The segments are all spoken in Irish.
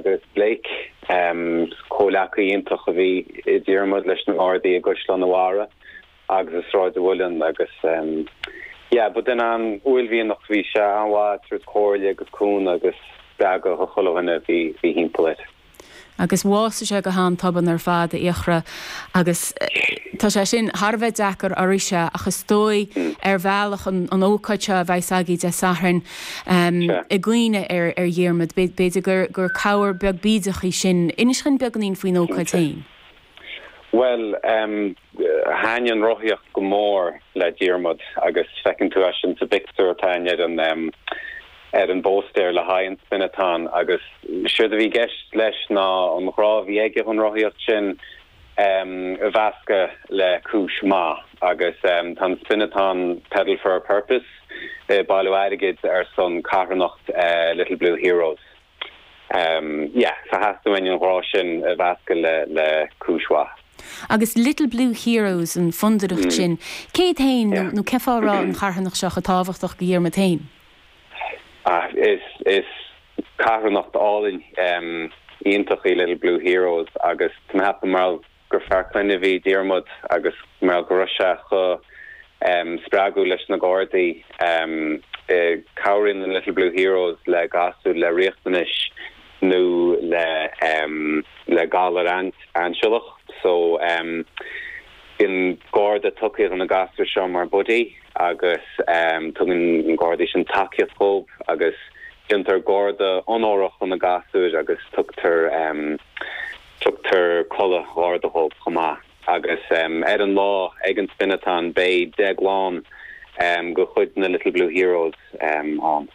Chris Blake, comhleacaí iontach a bhí i Diarmuid leis na nGardaí i gCaisleán an Bharraigh agus i Sráid an Mhuilinn agus yeah ba duine an-uaillmhianach a bhí sé, an-mhaith ag tabhairt comhairle agus cúnamh agus spreagadh dho chuile dhuine a bhí thimpeall air. Agus bhásaigh sé go han-tobann ar fad a Fhiachra agus tá sé sin thar a bheith deacair go háirithe ach is dóigh ar bhealach an ócáid seo a bheas againn Dé Sathairn, i gcuimhne ar Dhiarmaid, b'fhéidir gur cabhair beag bídeach í sin. Inis dhuinn beagáinín faoin ócáid féin. Bhuel, thaitnigh an rothaíocht go mór le Diarmaid agus feiceann tú é sin sa bpictiúr atá in airde ar an bpóstaer le haghaidh an Spin-a-Thon agus séard a bhí i gceist leis ná an ghrá a bhí aige dhon rothaíocht sin mheascadh le cúis maith agus tá an Spin-a-Thon Pedal for a Purpose ag bailiú airgid ar son carthanacht Little Blue Heroes. Yeah, so theastaigh uainn an ghrá sin a mheascadh le cúis mhaith. Agus Little Blue Heroes, an fondúireacht sin, céard faoi nó cé fáth a raibh an charthanacht seo chomh tábhachtach dho Dhiarmaid fhéin? Ach is carthanacht álainn, iontach í Little Blue Heroes agus tá mé a cheapadh mar gur fear clainne a bhí i Diarmuid agus mar go raibh sé chomh spreagúil leis na Gardaí. Cabhraíonn an Little Blue Heroes le gasúir le riachtanais nó le le galar ainsealach so bíonn Garda tugtha do na gasúir seo mar buddy agus tugann na Gardaí sin tacaíocht dhóibh agus déantar Garda onórach de na gasúir agus tugtar tugtar culaith Gharda dhóibh chomh maith agus ar an lá ag an Spin-a-Thon beidh Deaglán de chuid na Little Blue Heroes ann.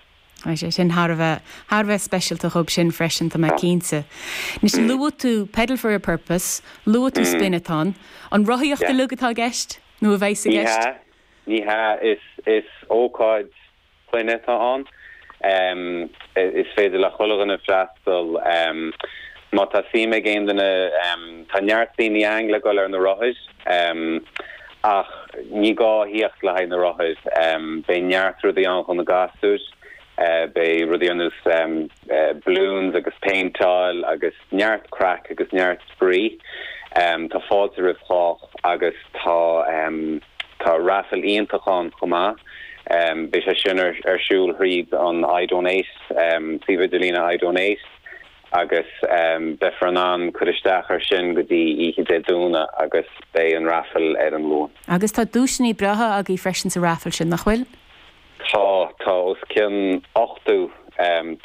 Tá sé sin thar a bheith, thar a bheith speisialta dhóibh sin freisin, tá mé cinnte. Anois, luaigh tú Pedal for a Purpose, luaigh tú Spin-a-Thon. An rothaíocht uilig atá i gceist nó a bheas i gceist? Ní hea, ní hea, is, is ócáid clainne atá ann. Is féidir le chuile dhuine freastal. Má tá suim ag aon duine, tá neart daoine ann le dul ar na rothair, ach ní gá a thíocht le haghaidh na rothair, beidh neart rudaí ann dho na gasúir, beidh rudaí ar nós balloons agus péinteáil agus neart craic agus neart spraoi. Tá fáilte roimh chách agus tá tá raifil iontach ann chomh maith, beidh sé sin ar siúl thríd an I Donate, suíomh idirlín I Donate. agus beifear in ann cur isteach ar sin go dtí oíche Dé Domhnaigh agus beidh an raifil ar an Luan. Agus tá duaiseanna breátha agaibh freisin sa raifil sin, nach bhfuil? Tá, tá os cionn ochtó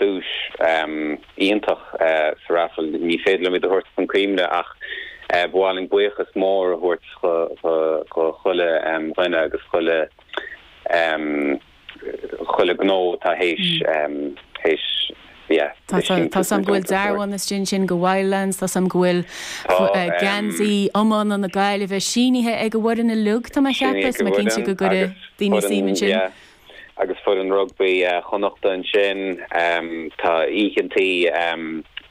duais iontach sa raifil. Ní féidir liom iad a thabhairt chun cuimhne ach ba mhaith linn buíochas mór a thabhairt do chuile dhuine agus chuile chuile ghnó atá théis, théis, yeah. Tá a fhios agam, tá a fhios agam go bhfuil dearbhán istigh ansin, go Wildlands, tá a fhios agam go bhfuil geansaí iomána na Gaillimhe sínithe ag an bhfoireann uilig, tá mé a cheapadh, so tá mé cinnte go gcuireadh daoine suim ansin. Agus foireann rugbaí Chonnachta ansin, tá oícheantaí,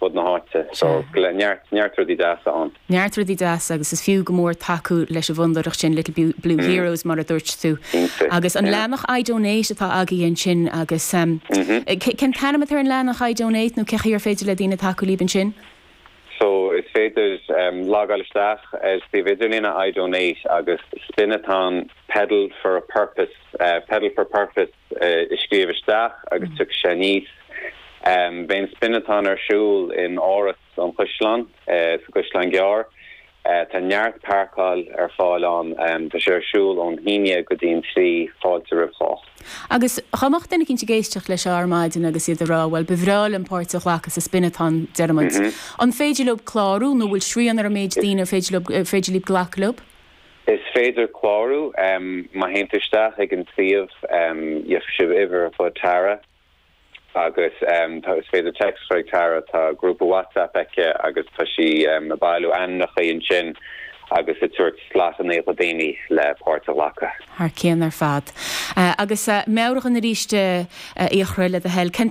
fud na háite. So, gla, neart, neart rudaí deasa ann. Neart rudaí deasa agus is fiú go mór tacú leis an bhfondúireacht sin, Little, Little Blue Heroes, mar a dúirt tú. Cinnte. Agus an leathnach I Donate atá agaibh ansin agus ehm, cé, cén t-ainm atá ar an leathnach I Donate nó cé chaoi ar féidir le daoine tacú libh ansin? So, is féidir ehm, logáil isteach ar suíomh idirlíne I Donate agus Spin-a-Thon, Pedal for a Purpose, eh, Pedal for Purpose, a scríobh isteach agus tiocfaidh sé aníos. Beidh an Spin-a-Thon ar siúl in Áras an Chuisleáin sa gCaisleán Gearr. Tá neart páirceáil ar fáil ann. Tá sé ar siúl ón haon go dtí an trí, fáilte roimh chách. Agus dhá mbeadh duine eicínt ag éisteacht leis seo ar maidin agus iad ag rá, bhuel, ba bhreá liom páirt a ghlacadh sa Spin-a-Thon, deir muid, an féidir leob clárú nó bhfuil srian ar an méid daoine ar féidir leob, féidir leob glacadh leob? Is féidir clárú má théann tú isteach ag an suíomh gheobhaidh sibh uimhir fón Tara agus tá, is féidir text a chur ag Tara, tá grúpa WhatsApp aici agus tá sí ag bailiú ainmneacha ansin agus ag tabhairt slot amach do dhaoine le páirt a ghlacadh. Thar cionn ar fad. Agus meabhraigh dúinn aríst, a chroí, le do thoil. Cén